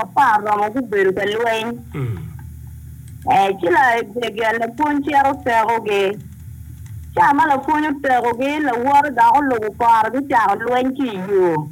Apar romo gubedo ka lweny, ci laegege lapwony cito tekogi. Ca ma lapwony otekogi, lawote dok olubo kore gucako lweny ki i yo.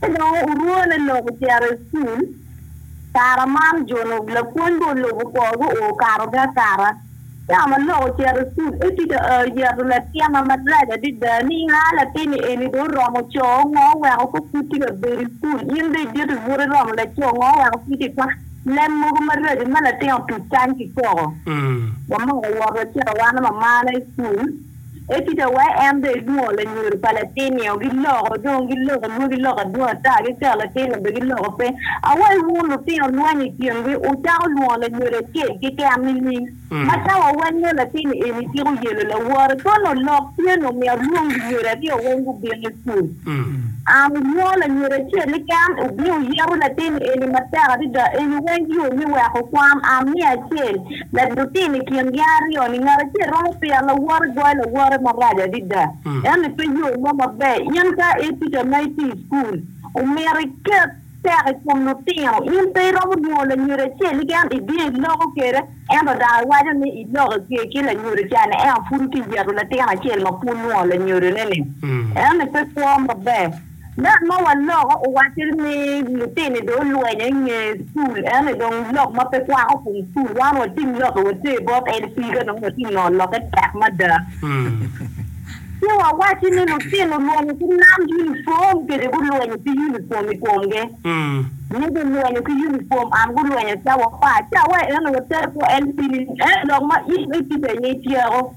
Ci dong orwone lok ocito i cukul. Kare man ojuno lapwony be olubo korgi okato gi akata. Ka ma lok ocito i cukul, Edith oyeto latinna marac adada. Niang, A latinni eni dong oromo co, ngo oweko kong pud tye ka bedo i cukul? In dong idito i buto iromo laco, ngo oweko pud itye ka kwano leb mogo maraco ma latin otuc kany ki koko? Wamoko wot wacito wan ma mamana i cukul. Ecita wa en dong elwongo lanyodo pa latin nio giloko dong giloko lwo giloko adwong ata gikero latin nio bene giloko pe awa iwun lutino lweny ikin gi wucako lwongo lanyodo acel kiken nining ma ka wa weng nio latin ni eni ciko yelo lawore koni olok tye no myero lwong lunyodo aryo weng gubin ikul ang ilwongo lanyodo acel iken ubin wuyeto latin ni eni matek adada eni weng yo me weko kwam ang miya acel Med lutino i kin gin aryo-ni, ngat acel romo piro lawote goyo lawote marac adada. Eno pe yo mo maber. In ka i tica ma itye i cukul, omyero iket teko i kom lutino. In pe iromo lwongo lanyodo acel keken i dye iloko kwede, ento dong iwaco ni iloko ki ki lanyodo ca ni ento pud itye ka yeto latin acel ma pud lwongo lanyodone-ni. Eno-ni pe kwo maber. Ngat ma waloko owacce ni lutine dong olwenyo i nge cul ene dong lok ma pe kwako kom cul wan wating lokke water bot en pii ka dong watye nongo lokke tek mada ci wawacci ni lutino lwenyo ki nam uniform kede gulwenyo ki uniform i komge ni gulwenyo ki uniform and gulwenyo cawa apar cawa eno water bot en pii eno lok ma in itye kwede ni ityeko.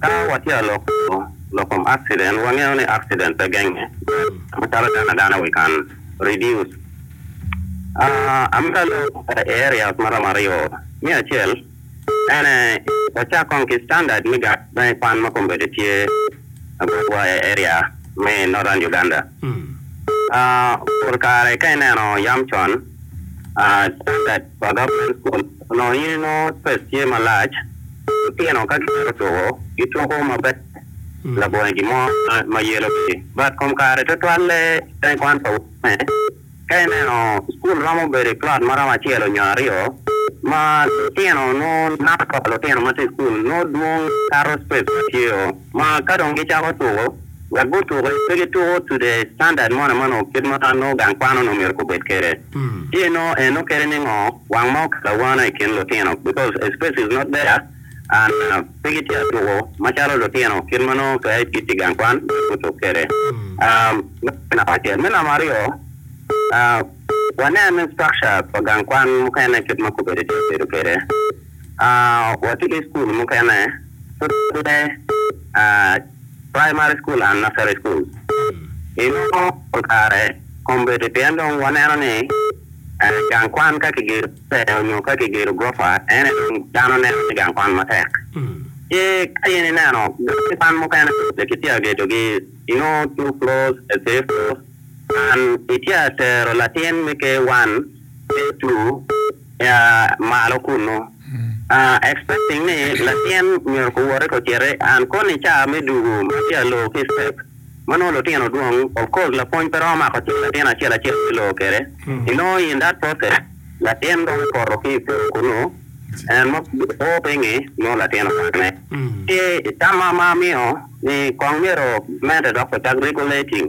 Ka watye ka loko lok kom akciden, wangeyo ni akciden pe genge macalo dano adana we can reduce amata load e areas maromo aryo. Me acel, ene wacak kong ki standard me gat ma i kwan ma kong bedo tye i botwa i area me Northern Uganda. Pol kare ka ineno yam con, standard pa gavman kun onongo in inongo space tye malac, lutino ka gimito tuko gituko maber labongo gin mo ma yelo gi but kom kare tutwalle kene kwan pa wune ka ineno school romo bedo i plot ma romo acel onyo aryo ma lutino nongo number pa lutino matye i school nongo dwong kato space ma tye o ma ka dong gicako tuko wek gutuki pe gituko to the standard mo na manongo kit ma nongo gang kwan onongo myero gubed kwede. Ci enongo en okele ningo wang ma okelo awana ikin lutino because a space is not there and pe gitye atuko macalo lutino kit ma nongo pe gitye gang kwan nyo gutuk kwede. Meno me namba acel. Me namba aryo wanen ni structure pa gang kwan mukene kit ma kobedi tye ka bedo kwede watye ki school mukene pud pe Primary School and Nursery School. I nongo pol kare kombeddi pien dong waneno ni gang kwan ka kigedo maber onyo ka kigedo gurofa ene dong dano neno ni gang kwan matek. Ci ka in ineno gang kwan mukene pe kitye ka gedogi, you know two floors, three floors and itye ka tero latin me K1 ki K2 malo kunu. Expecting ni latin myero ko woti ko citi and koni caa me dugu ma tye a loo ki step ma nongo lutino dwong of course lapwony pe romo mako cing latin acel acel me loo kede i nongo in that process latin romo poto ki pol kunu and ma po pe ngi nongo latin omak ne ki tama ma amiyo ni kong myero mente dok ocak regulating.